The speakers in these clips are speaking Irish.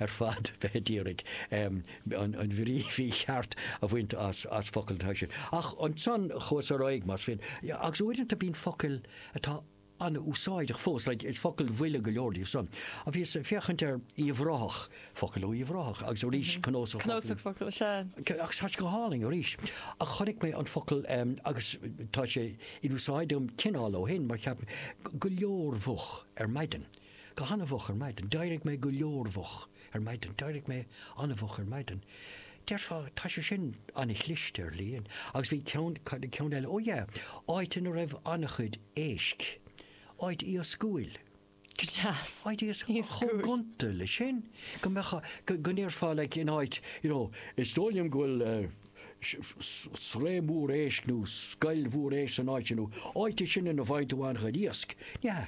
ar fad a bheith ag iarraidh an bhrí mhícheart a bhaint as focail atá sin. Ach ansan chuas ar aghaidh, más fíor, agus uaireanta bíonn focail atá an-úsáideach fós, like, is focail bhaile go leor díobh san, ó bhíos ag féachaint ar Uíbh Ráthach, focail ó Uíbh Ráthach, agus arís cnuasach focal, cnuasach focal, sea. Agus tá sé go hálainn arís. Ach chonaic mé an focal, agus tá sé in úsáid agam cineál ó shin, mar cheap mé, go leormhoch ar maidin. Go han-mhoch ar maidin. D'éirigh mé go leormhoch ar maidin. D'éirigh mé an-mhoch ar maidin. Déarfá, tá sé sin an-chliste, ar shlí. Agus bhí ceann, cad é ceann eile? Ó yeah, áit ina raibh an-chuid éisc. Áit iascúil. Go deas. Áit iascúil. Chomh gonta leis sin, go mbeadh, go ndéarfá, like, in áit, you know, is dóigh liom go bhfuil sraith mhór éisc nó scoil mhór éisc san áit sin, nó áit é sin ina bhfaigheann tú an-chuid iasc. Ní hea,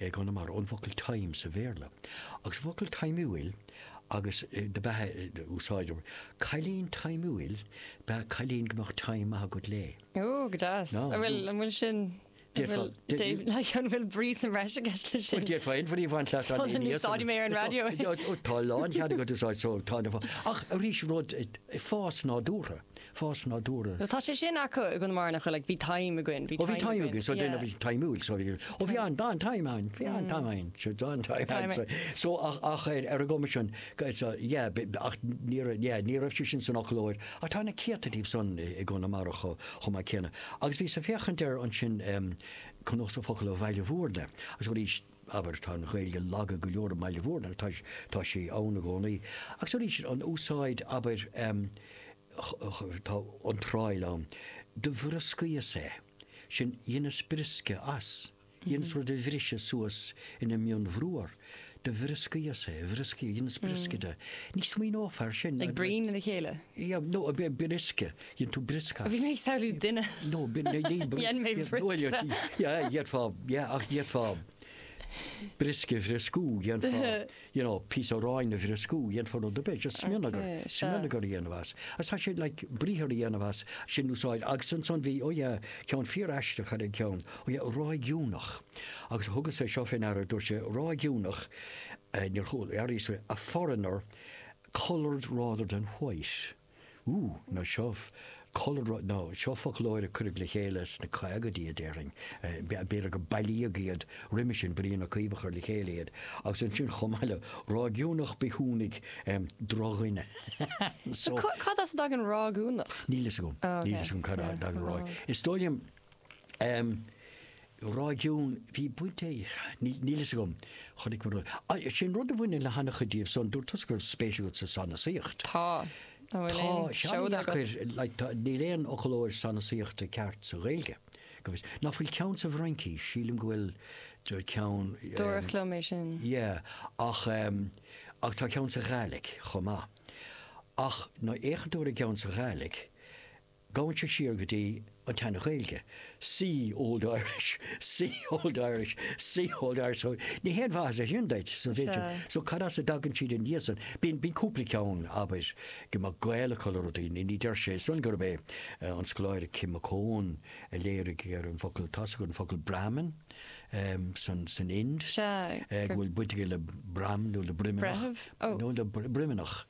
i gConamara ón bhfocal time sa Bhéarla, agus an focal taimiúil agus dob ea a úsáid, cailín taimiúil, ba ea cailín go mbeadh time maith agat léi. Ó, go deas. An bhfuil, an bhfuil sin, an bhfuil, Dave, like, an bhfuil brí san bhreis aige leis sin? Bhuel, déarfá fhéin, bhrí bhaint leat an fhine. Úsáidim é ar an raidió. Ó, tá lánchead agat é a úsáid, so, tá, ach arís rud, fás nádúrtha, fás nádúrtha. Tá sé sin acu i gConamara nach bhfuil, like, bhí time againn, bhí time againn. Ó, bhí time againn, so déanamh bhí taimiúil, so bhí, ó, bhí an, an time an, bhí an time an, so bhí an time an, so, so ach, ach ar, ar an gcuma sin, so, yeah, ach ní raibh, yeah, ní raibh sé sin san fhoclóir, ach tá na céadta díobh san i gConamara chomh, chomh maith céanna. Agus bhíos ag féachaint ar ansin, um, Cnuasach Focal ó Bhaile Mhúirne, agus arís, Abair, tá an Ghaeilge lag go leor i mBaile Mhúirne, agus tá sí ann i gcónaí, agus arís an úsáid, abair, tá iontráil ann, do bhrioscaíos é, sin, dheineas briosca as, dheineas rud a bhriseadh suas ina mhionbhruar, do bhrioscaíos é, bhrioscaíos, dheineas briosca de, ní smaoineofá ar sin. Ag bruíon le chéile? Yeah, no, briosca, Dhein tú briosca. Bhí mé ag samhlú duine. No, Dhein mé briosca. Dhéanfá, yeah, ach dhéanfá briosca a bhrioscú, dhéanfá, you know, píosa aráin a bhrioscú, dhéanfá nó do bheith, just smionagar, smionagar a dhéanamh as. As tá sé, like, briathar a dhéanamh as, sin úsáid, agus ansan bhí, ó yeah, ceann fíor aisteach ar an ceann, ó yeah, ráigiúnach. Agus thugas é seo fé ndeara, dúirt sé, ráigiúnach, eh, nickname ar a foreigner, coloured rather than white. Ú, ná seo cúlra, ná seo foclóir a cuireadh le chéile sna caogaidí, déarfainn. B'fhéidir gur bailíodh iad roimis sin, Brian Ó Cuív a chuir le chéile iad. Agus ansin, chomh maith le ráigiúnach, bithiúnach, drochdhuine. So. Cad as a dtagann ráigiúnach? Níl fhios agam. Níl fhios agam cad as a dtagann ráig. Is dóigh liom. réigiún, bhí baint ag, níl a fhios agam, chonaic mé rud, sin rud a bhaineann le han-chuid díobh so dúirt tusa go raibh spéis agat sa sanasaíocht. Tá, an bhfuil aon seoda agat? Tá, tá sé an-dheacair, níl aon fhoclóir sanasaíochta ceart sa Ghaeilge, go bhfios, nach bhfuil ceann sa bhFraincís, sílim go bhfuil ceann, dúradh liom é sin, yeah ach ach tá ceann sa Ghaidhlic chomh maith ach má fhéachann tú ar an gceann sa Ghaidhlic, Gabhann sé siar go dtí an tSean-Ghaeilge, see Old Irish, see Old Irish, see Old Irish, so ní haon mhaitheas é sin duit, so b'fhéidir, so cad as a dtagann siad ina dhiaidh san? Bíonn, bíonn cúpla ceann, abair, go mbeadh gaol acu le rudaí, ní, ní deirtse san gurb é an scoláire Kim McCone a léirigh ar an bhfocal, tá's agat an focal Brahmin san, san Ind, go bhfuil baint aige le broim nó le broimneach, nó le broimneach.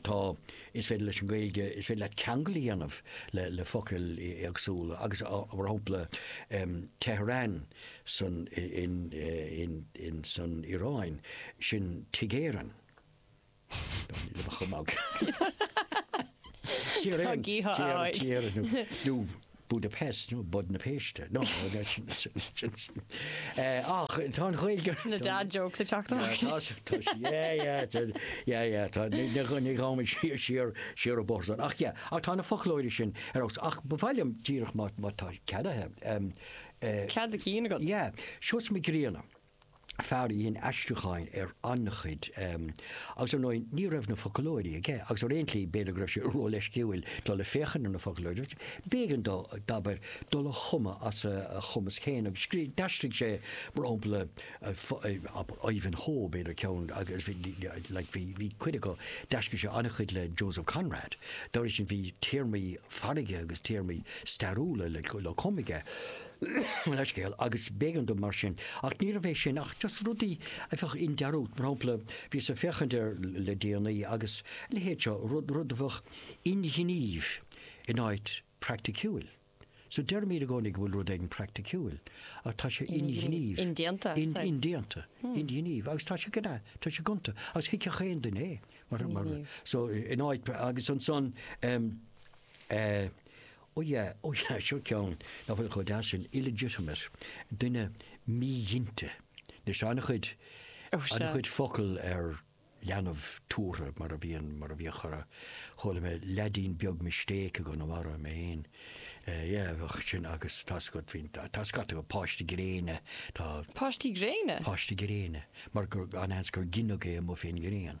Tá. Is féidir leis an Ghaeilge, is féidir leat ceangail a dhéanamh le focail éagsúla agus mar shampla Tehran san Iaráin, sin Tigh Éireann. Tá gídh ann. Budapest, nó Bud na Péiste. No, ach tá an Ghaeilge. Sin na dad jokes ag teacht amach. Tá, tá, yeah, yeah, tá, yeah, yeah, tá, ní, ní, ní raghaimid siar, siar an bóthar san. Ach, yeah, ach tá na foclóirí sin ar fónamh, ach ba mhaith liom díreach má, má tá cead agam, um, eh, Cead do chinn agat. yeah, Seosamh Mac Grianna. fear a dhein aistriúcháin ar an-chuid, agus ar ndóigh ní raibh na foclóirí aige, agus ar aon slí, b'fhéidir go raibh sé ró-leisciúil dul ag féachaint ar na foclóirí, agus b'éigean dó, abair, dul a chumadh as a chumas féin, agus scríobh, d'aistrigh sé, mar shampla, Ivanhoe, b'fhéidir, ceann, agus bhí, like, bhí, bhí cuid acu, d'aistrigh sé an-chuid le Joseph Conrad, dá bhrí sin bhí téarmaí farraige agus téarmaí stairiúla le cumadh aige. an scéal agus b'éigean dó mar sin. Ach níorbh é sin ach just rudaí a bheadh i ndearúd. Mar shampla, bhíos ag féachaint air le déanaí agus a leithéid seo, rud, rud a bheadh inghnímh in áit praiticiúil. So deirimid i gcónaí go bhfuil rud éigin praiticiúil ach tá sé inghnímh. Indéanta, I suppose. Indéanta, inghnímh agus tá sé gonta, tá sé gonta agus thuigfeadh aon duine é mar, mar, so in áit agus ansan, eh, Ó yeah, ó yeah, seo ceann nach bhfuil chomh deas sin, illegitimate, duine míghinte. Anois, tá an-chuid, Oh, sure. an-chuid focal ar leanbh tabhartha, mar a bhíonn, mar a bhíodh chorr, chuala mé leaidín beag mistake i gConamara, mé fhéin, eh, yeah, bheadh sin agus tá scut, bhíonn, tá scata acu, páiste gréine, tá, Páistí gréine? páiste gréine, mar gur, an-seans gur gineadh é amuigh fén ngréin.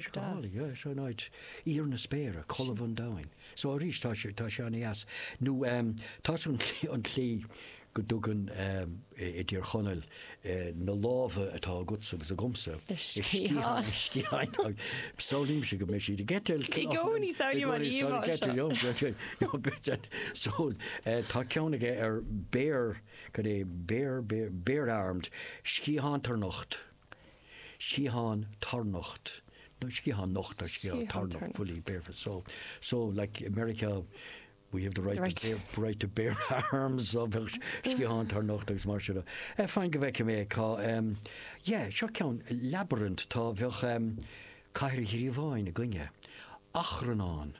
Scáil, yeah, so an áit, íor na spéire, colbh an domhain. So arís tá sé, tá sé an-deas. Nó ehm, tá san tslí, an tslí go dtugann ehm i dTír Chonaill eh na lámha atá agatsa agus agamsa, sciatháin, sciatháin, samhlaímse go mbeidh siad ag eitilt, I gcónaí, samhlaím an íomhá seo. So eh tá ceann aige ar bare, cad é, bare, bare, bare-armed, sciathán tarnocht. sciathán tarnocht, nó sciathán nocht nó sciathán tarnocht, fully barefoot, so, so like America, we have the right to bear, right to bear arms, so bheadh sciathán tarnocht agus mar sin de. Eh, fine, go bhfeicfidh mé cá, em, yeah, seo ceann, labyrinth, tá, bheadh, em, cathair ghríobháin againne, achrannán.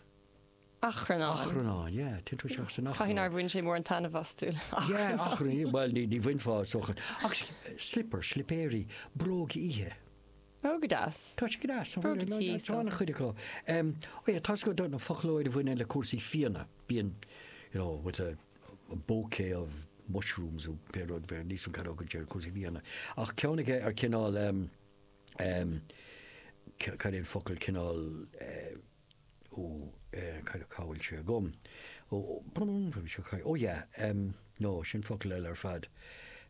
Achrannáin. Achrannáin, yeah, téann tú isteach san achrann. Caithfidh nár bhain sé mór an taitneamh astu. Yeah, achrann, bhuel, ní, ní bhainfeá ar aon chaoi. Ach sliopar, slipéirí, bróg oíche. Ó, go deas. Tá sé go deas. Bróga tí, so. Tá an-chuid acu. Em, oh yeah, tá scata focal a bhaineann le cúrsaí fíona, bíonn, you know, with a bouquet of mushrooms nó pé rud, bheadh níos mó cad é chúrsaí fíona. Ach ceann aige ar cineál, em, em, cad é an focal, cineál, eh, Ó, eh, cad cá bhfuil sé agam? Ó, brrrm, bhí sé caidé, ó yeah, em, no, sin focal eile ar fad.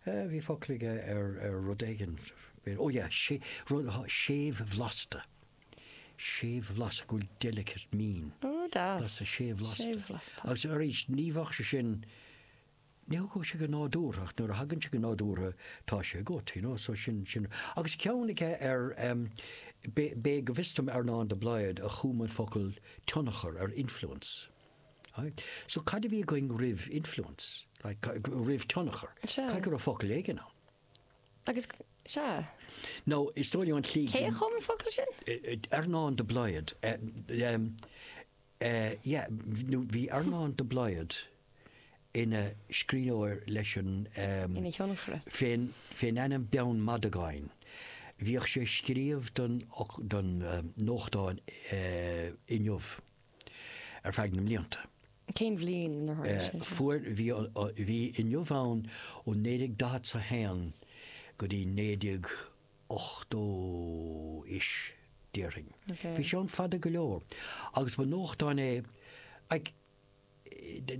Eh, bhí focal aige ar, ar rud éigin, b'fhéidir, ó yeah, sea, rud, ha, séimhbhlasta. Séimhbhlasta, go bhfuil delicate, mín. Ó, deas. Blasta, séimhbhlasta. Séimhbhlasta. Agus arís, ní bheadh sé sin Ní thiocfadh sé go nádúrtha, ach nuair a thagann sé go nádúrtha, tá sé agat, you know, so sin sin. Agus ceann aige ar em. B'é, b'é, go bhfios dom Earnán de Blaghad a chum an focal tionchar ar influence. Aye. So cad a bhí againn roimh influence? Like, roimh tionchar? Sea. Caithfidh go raibh focal éigin ann. Agus, sea. Nó is dóigh liom an tslí. Cé a chum an focal sin? Earnán de Blaghad. Em. Eh yeah, nó bhí Earnán de Blaghad ina scríbhneoir leis an em Ina thionchaire. fén fén ainm Beann Madagáin. Bhíodh sé ag scríobh don don em nuachtán eh Inniu ar feadh na mblianta. Cén bhliain inar tharla Eh sé seo? fuair bhí an bhí Inniu ann ó naoi déag daichead 's a haon go dtí naoi déag 80-ish, déarfainn. Bhí sé ann fada go leor, agus ba nuachtán é, like,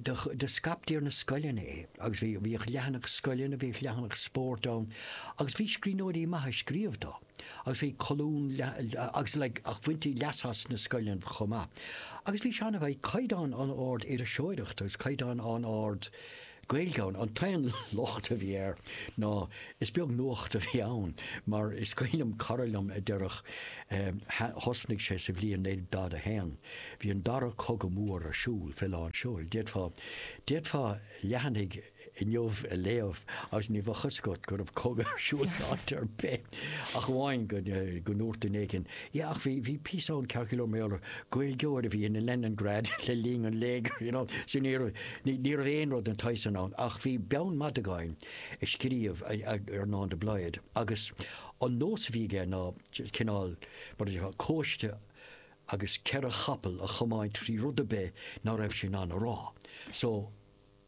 do scaiptí ar na scoileanna é, agus bhí, bhíodh leathanach scoileanna, bhíodh leathanach spóirt ann, agus bhí scríbhneoirí maithe ag scríobh dó, agus bhí colún, agus like, ach bhaintí leas as sna scoileanna chomh maith. Agus bhí sé an-, bhí caighdeán an-ard iriseoireachta, agus caighdeán an-ard, Gaeilge ann. An t-aon locht a bhí air ná is beag nuacht a bhí ann, mar is cuimhin liom cara liom a déarfadh, thosnaigh sé sa bhliain 1941, bhí an dara cogadh mór ar siúl fé lán seoil, d'fhéadfá, d'fhéadfá leathanaigh Inniu a léamh agus ní bheadh fhios agat go raibh cogadh ar siúl in áit ar bith. Ach amháin go ndúirt duine éigin, 'Yeah, ach bhí, bhí píosa ann ceart go leor, mar gheall ar Ghaeilgeoir a bhí in Leningrad le linn an léigir, you know. So ní raibh, ní raibh aon rud den tsaghas sin ann. Ach bhí Beann Madagáin ag scríobh, Earnán de Blaghd agus an nós a bhí aige ná cineál, mar a déarfá, cóiste agus ceithre chapall a chomáint trí rud ar bith ná raibh sé in ann a rá. So.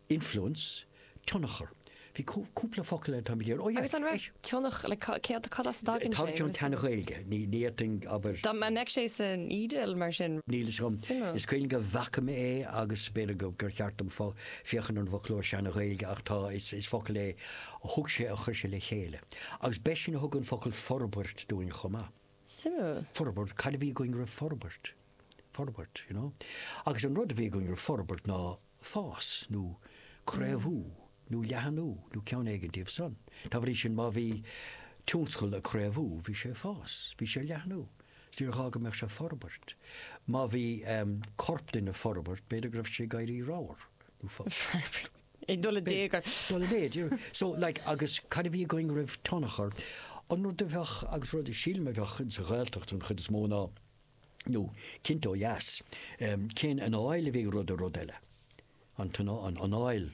Influence, tionchar. Bhí cúpla focal eile, táimid ar, oh yeah. Agus an raibh tionchar, like cad, cad as a dtagann sé? Tá tionchar tSeana-Ghaeilge, ní, ní fhéadfainn, abair. Dá mbeadh sé san Iodáil mar sin. Níl fhios agam. Suimiúil. Is cuimhin liom go bhfaca mé é agus b'fhéidir go, gur cheart dom fo, féachaint ar an bhfoclóir Seana-Ghaeilge ach tá, is, is focal é a thug sé, a chuir sé le chéile. Agus b'eisean a thug an focal forbairt dúinn chomh maith. Suimiúil. Forbairt, cad a bhí againn roimh forbairt? Forbairt, you know. Agus an rud a bhí againn roimh forbairt ná. fás, nó craobhú, nó leathnú, nó ceann éigin díobh san. Dá bhrí sin, má bhí tionscal ag craobhú, bhí sé ag fás, bhí sé ag leathnú, 's níor ghá go mbeadh sé ag forbairt. Má bhí corp duine ag forbairt, b'fhéidir go raibh sé ag éirí ramhar, nó forbairt. ag dul i dtéagar. Ag dul i méid. So, like, agus cad a bhí againn roimh tionchar? An rud a bheadh, agus rud a sílim a bheadh, ins an Ghaeltacht, an chuid is mó, ná, nó cinnte ó dheas. Cén anáil a bhí ag rud ar rud eile? An anáil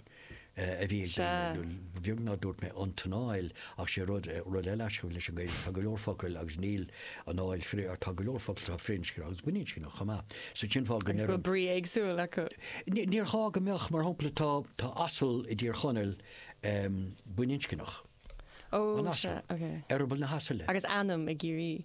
a bhí ag daoine, nó ba bheag nár dúirt mé an t-anáil, ach sé rud, rud eile athraigh leis an Ghaeilge, tá go leor focal agus níl anáil, tá go leor focal atá firinscneach agus baininscneach chomh maith. So cén fáth go ndeir an. Agus go bhfuil brí éagsúil acu. Níor ghá go mbeadh, mar shampla tá, tá asal i dTír Chonaill baininscneach. Ó, sea, ok. Eireaball na hasaile. Agus ainm i gCiarraí.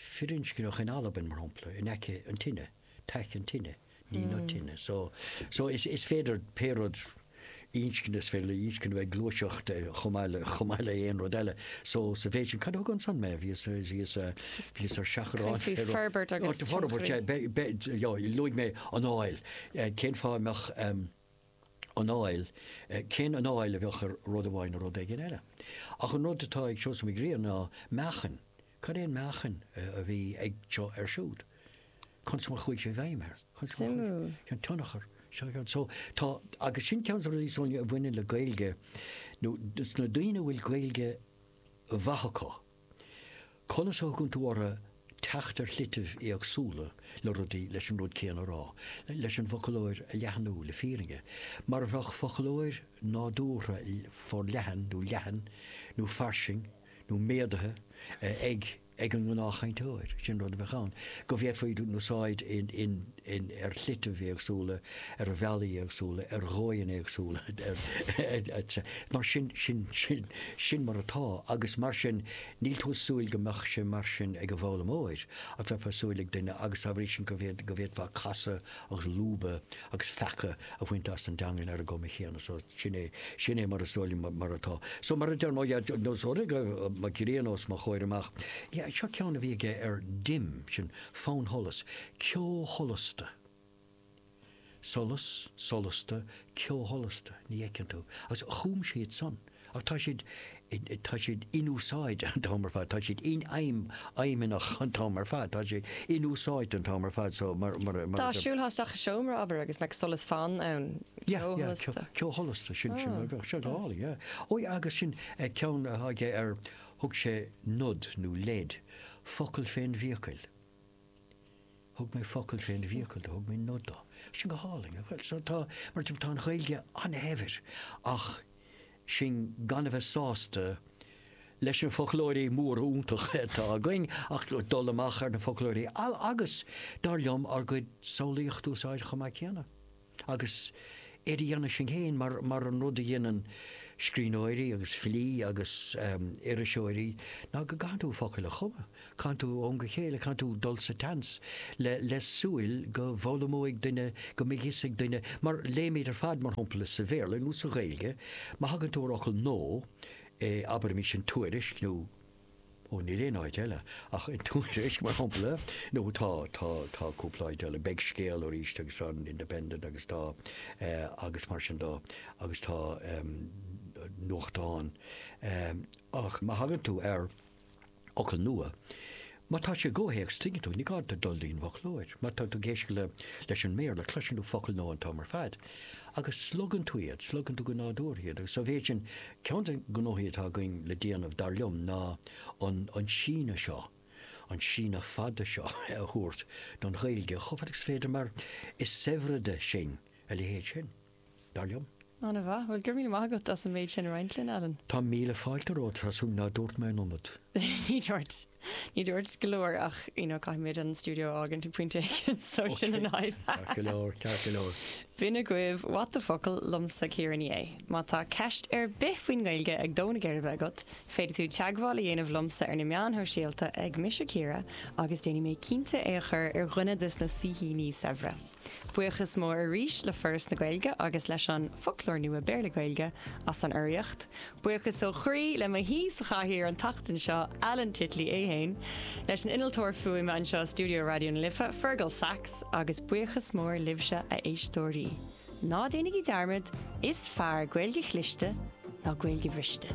firinscneach in Albain, mar shampla, in aice an tine, tac an teine, ní na tine. So, so is, is féidir pé rud inscne, is féidir le inscne bheith ag gluaiseacht chomh maith le, chomh maith le aon rud eile. So, sa mhéid sin, cad a thug ansan mé? Bhíos, bhíos, bhíos ar seachrán. Faoi forbairt agus. Forbairt, luaigh mé anáil. Cén fáth a mbeadh. anáil, cén anáil a bheadh ag rud amháin nó rud éigin eile? Ach an rud atá ag Seosamh Mac Grianna ná meáchain. Cad é an meáchan a bhí ag seo ar siúd? Conas mar a chuaigh sé i bhfeidhm air? Suimiúil. An tionchar. So, tá, agus sin ceann de na rudaí is dóigh liom a bhaineann le Gaeilge, is na daoine a bhfuil Gaeilge mhaith acu, Conas a thagann tú, abair, teacht ar shlitibh éagsúla le rudaí, leis an rud céanna a rá, leis an bhfoclóir a leathnú, le fírinne, mar a bheadh foclóir nádúrtha forleathan nó leathan nó fairsing nó méadaithe ag an ngnáthchainteoir, sin rud a bheadh ann, go bhféadfaí iad a úsáid in. ar shlitibh éagsúla, ar bhealaí éagsúla, ar dhóigheanna éagsúla, etc. Mar sin, sin, sin, sin mar atá, agus mar sin, níl tú ag súil go mbeadh sé mar sin ag an bhfoghlaimeoir, ach bheifeá ag súil ag duine, agus dá bhrí sin go, go bhféadfá casadh agus lúbadh agus feacadh a bhaint as an dteangain ar an gcuma chéanna. So, sin é, sin é mar is dóigh liom mar atá. So, mar a deir mo, yeah, nós, ó rith mo ghrian os mo chomhair amach, yeah, seo ceann a bhí aige ar dim, sin, Fannsholas, ceosholasta. Solas, solasta, ceosholasta, ní fheiceann tú. Agus chum siad san. Ach tá siad, tá siad inúsáidte an t-am ar fad, tá siad infheidhmeannach an t-am ar fad, tá siad inúsáidte an t-am ar fad so mar, mar a, mar a. Dá siúlthá isteach i seomra, abair, agus mbeadh solas fann ann, ceosholasta. Yeah, yeah, ceosholasta, sin, sin mar a bheadh, sin dall, yeah. Ó yeah, agus sin ceann atá aige ar Thug sé nod nó leid, focal fén bhfiacail. Thug mé focal fén bhfiacail do, thug mé nod do. Sin go hálainn, nach bhfuil? So tá, mar sin, tá an Ghaeilge an-shaibhir ach sinn gan a bheith sásta leis na foclóirí móra iontacha atá againn ach dul amach ar na foclóirí agus, dar liom, ár gcuid samhlaíocht a úsáid chomh maith céanna. Agus iad a dhéanamh sinn féin, mar an rud a dhéanann scríbhneoirí agus filí agus iriseoirí, ná go gcaitheann tú focail a chumadh, caitheann tú ó am go chéile, caitheann tú dul sa tseans le súil go bhfoghlaimeoidh duine, go mbeidh fhios ag duine, mar léimid ar fad, mar shampla, sa Bhéarla nó sa Ghaeilge, má thagann tú ar fhocal nua abair, i mbíonn sé in Tuairisc nó. Ó, níl aon áit eile ach in Tuairisc, mar shampla. Nó tá, tá, tá cúpla áit eile. Beidh Scéal ar ais agus tá an Independent agus tá, eh, agus mar sin de, agus tá, em, nuachtán. Em, ach má thagann tú ar fhocal nua, má tá sé i gcomhthéacs, tuigeann tú, ní gá duit dul dtí'n bhfoclóir. Má tá tú ag éisteacht le, leis an mBéarla, cloiseann tú focal nua an t-am ar fad. Agus slogann tú iad, slogann tú go nádúrtha iad. Agus sa mhéid sin, ceann de na gnóthaí atá againn le déanamh, dar liom, ná an síneadh seo, an síneadh fada seo, a thabhairt don Ghaeilge chomh fada agus is féidir, mar is saibhride sinn a leithéid sin, dar liom. Ana-mhaith. Bhuel, go raibh míle maith agat as an méid sin a roinnt linn, Alan. Tá míle fáilte romhat, tá súil nach ndúirt mé an iomad. Ní dúirt. Ní dúirt go leor ach you know caithfimid an stiúideo a fhágaint ag pointe éigin so sin an fhadhb. Ok, ceart go leor, ceart go leor. B'in agaibh What the Focal liomsa Ciara Ní É. Má tá ceist ar bith faoin nGaeilge ag dó na geirbe agat, féadfaidh tú teagmháil a dhéanamh liomsa ar na meáin shóisialta ag Mise Ciara agus déanfaidh mé cinnte é a chur ar dhuine de sna saoithíní saibhre. Buíochas mór arís le Foras na Gaeilge agus leis an Foclóir Nua Béarla-Gaeilge as an urraíocht. Buíochas ó chroí le mo shaoi sa chathaoir an tseachtain seo, Alan Titley é féin, leis an innealtóir fuaime anseo i stiúideo Raidió na Life, Fearghal Saxe, agus buíochas mór libhse, a éisteoirí. Ná déanaigí dearmad, is fearr Gaeilge chliste ná Gaeilge bhriste!